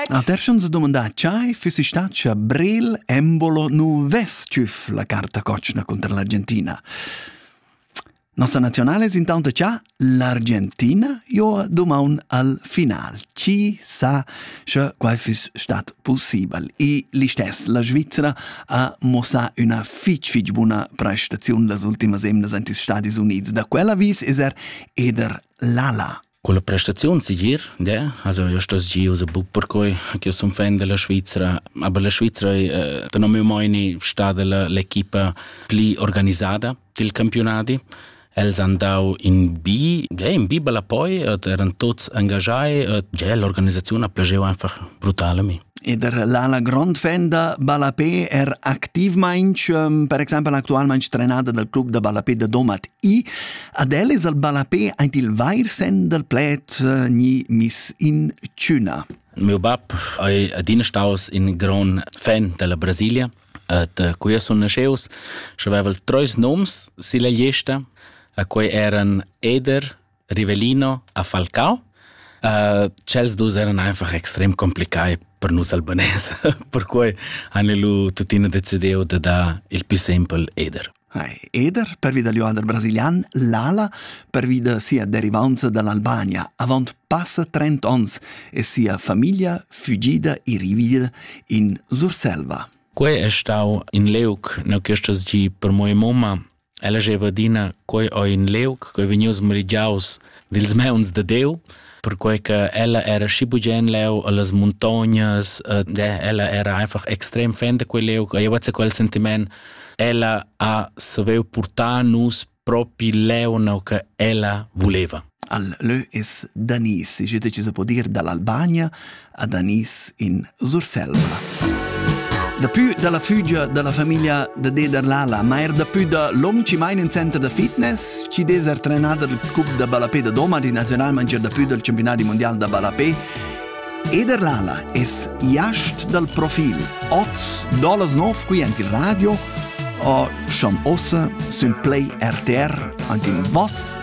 La terschun se domandà chai füssi stat scha Brel embolo nu vess tschüff la carta cotschna contra l'Argentina. Nossa nazionale es intanto cha l'Argentina jo domaun al final. Chi sa sche quai füss stat possibel? E l'istess, la Svizzera ha mossà üna fich fich buna prestaziun las ultimas emnas ant ils Stadis Units. Da quella vis es er eder l'ala. Culla prestaziun segir, de, also io sto giu se buc perquei che sun fan della Svizra, aber la Svizra è da non mi meini stada la l'equipa pli organisada dil campionati. Els han dau in bi, ja, in bi bella poi, et eran tots engagai, et ja, l'organisaziun ha plageu einfach brutal a mi. E der l'ala grond fenda Balapé er activmainch, per exempel actualmainch trenada del club de Balapé de Domat I, Ad el es al ballapè aint il vair sen dal pled eh, gni miss in tschüna. Meu bab è adina staus in gran fan della Brasilia et uh, qui sun nasceus și aveval trois noms silla gliesta a cui eran Eder, Rivelino a Falcao. Uh, cels dus eran einfach extrem complicai per nus albanese, per cui han lu tuttina decidiu de da il più sempel Eder. Eder, pervi dal joader brasilian, l'ala, pervi da sia derivanza dall'Albania, avant passa 30 onns e sia famiglia fugida e rivida in Surselva. Quei è stau in leuc na questas gi per mia mamma. Ella jeva adina, quei o in leuc che vegnius merigiaus dils meuns de Deu, perquei che ella era schi bugen leu allas montognas, eh, ella era einfach extrem fan de quel leu, e io quel sentiment, ella ha saviu portar nus propi leu no che ella voleva. Al leu es Danis, je deciso può dire dall'Albania ad Anis in Surselva. Dapü da la fügia da la famiglia da Deder Lala, ma er dapü da l'hom chi maina in center da fitness, chi des er trenà dal cup da ballapé da Doma, di naziunalmain dapü dal campionat mundial da ballapé. Eder Lala es iast dal profil. Oz dolas nov qui ant il radio o schon ossa sün Play RTR, ant in voss